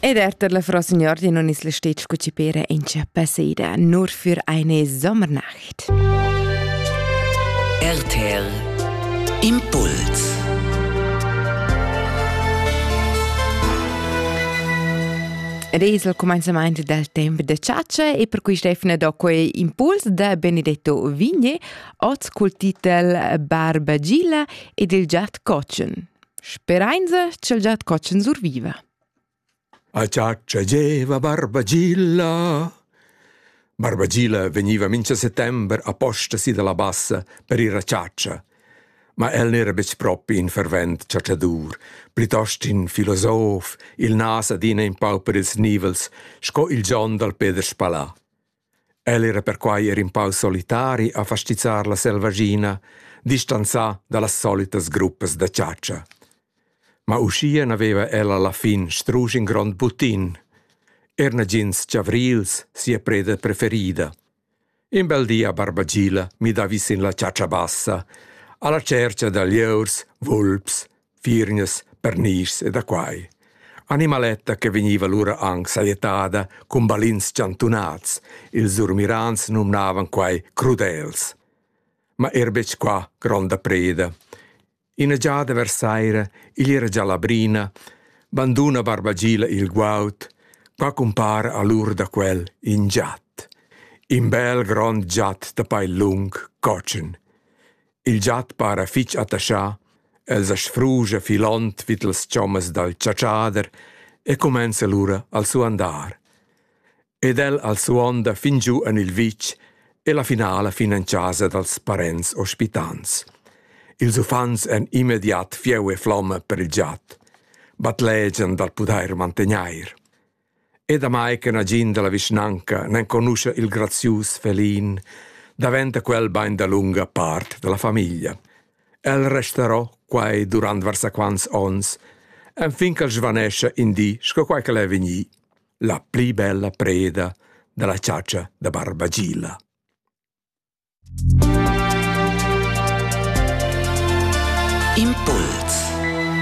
Ed erter la Frau Signor di non isla stec cu ci pere in cia passeida nur für eine Sommernacht. RTL Impuls Ed es il començament del temp de ciaccia e per cui Stefane do quei impuls da Benedetto Vigne, oz col titel Barba Gilla ed il giat Cocen. Sperainza ch'el giat cotschen surviva. A giat giageva Barbagilla. Barbagilla vegniva mincha settember a posta si dalla bassa per ir a chatscha. Ma el n'era betg propi in fervent chatschadur, plitost in filosof, il nas adina in pau per ils nivels, sco il John dal Peter Spalà. El era perquai er in pau solitari a fastizzar la selvaschina, distanzà da las solitas gruppas da chatscha. Ma uschia n'aveva el a la fin strusch in grond butin, er nagins chavrils sia preda preferida. In bel di a Barbagila mi davi sin la chatscha bassa, alla cercha da lieus, vulps Firgnas, pernischs e da quai. Animaletta che vegniva lura anc sajettada cun balins chantunats. Ils surmirans numnavan quai crudels. Ma er betg qua gronda preda. Ina giada vers saira, igl era già la brina, banduna Barbagila il guaud, qua cumpara a l'ur da quel in giat. In bel grond giat da pail lung, cotschen. Il giat para fich attaschà, el sa sfruscha filond vid las chommas dal chatschader e cumenza lura al suandar. Ed el al suonda fin giu en il vitg e la finala fin en chasa dals parents ospitants. Ils uffants èn immediat fieu e flomma per il giat, batlegian dal pudair mantegnair. E damai che nagin dalla vischnanca n'enconuscha il grazius felin, daventa quel bein dalunga part dalla famiglia. El resterò quai durant varsaquants onns, enfin ch'el svanescia in di sco quai ch'el è vegnì, la pli bella preda dalla ciacia da Barbagilla. Impuls